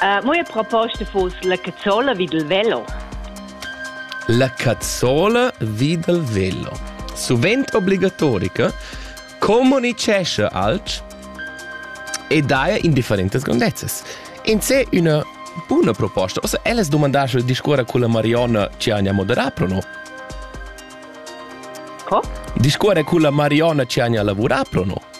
Uh, mo proposta fus la cazzola vid il velo. La cazzola vid il velo. Sovent obligatorica, comunicesce alch e daia indifferentes grondezzes. In se una buna proposta. Ossa, elas domandasse il discorra con la Marionna ci agna moderà, pro no? Co? Discorre con la Marionna ci agna lavorà, pro no?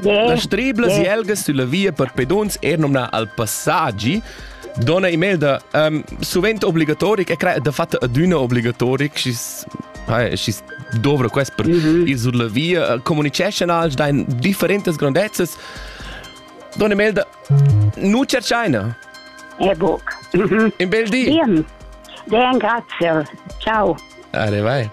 Yeah. Las triblas yeah. jelgas sulla via per peduns er nomna al passaggi Dona Imelda, um, sovent obligatoric e crea de fatta aduna obligatoric și și dovră quest per mm -hmm. ir sur la via comuniceschan als dein differentes grandezzes Dona Imelda, nu cercaina E buc In bel di Bien. Bien, grazie. Ciao. Are vai.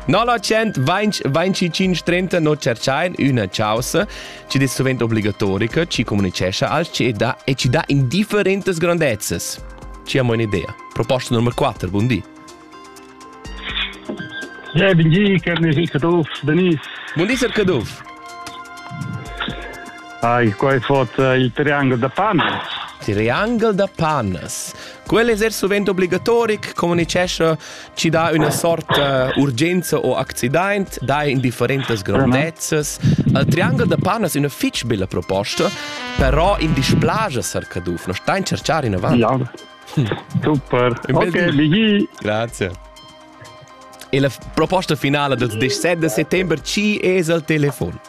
925 no cerchain üna chausa chi es sovent obligatorica, chi comunicescha als chi dà e chi dà in differentas grandezzas. Ci amo un'idea. Proposta numero 4, buon di. Ja, buen día, Carnes El Caduff. Denise. Buon dì, Sir Caduff. Hi, qua è fatto eh, il triangolo da Pannas. Triangolo da Pannas. Quello è sovente obbligatorico, comunicesce chi dà üna sorta urgenza o accidaint, dà in differentas grandezzas. Il Triangel da Pan es üna fich bella proposta, però in displaja Sar Caduff, no stai in cerchar inavant. Ja. Super. Ok, Michi. Grazie. E la proposta finale del 17 settembre ci es al telefon.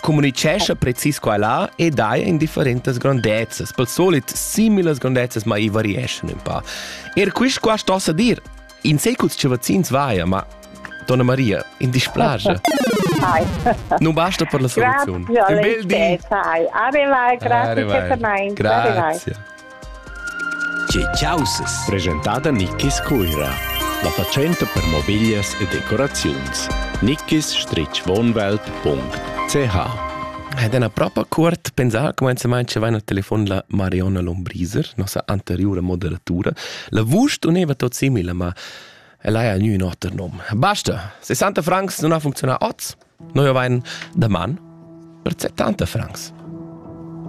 communicescha precis qua e là e dai in differentas grondezzas. Pel solit similas grondezzas, ma i varieschan un pa. Er quist qua stossa dir, in seculs che vaccins vaia, ma Donna Maria, in displasche. Ai. Non basta per la soluzione. Grazie, un bel dì. Ai. Arrivai, grazie, grazie. Tge chaussas? Presentada Nickis Cuira. La fatschenta per mobiglias e decoraziuns. nickis-wohnwelt.ch Ed è proprio curt pensar comenzament che vaina al telefon la Marionna Lombriser, nossa anteriore moderatura. La vusch uneva tot simile, ma ella ha nu un oter nom. Basta! 60 francs non ha funzionato oz. Noi avain da man per 70 francs.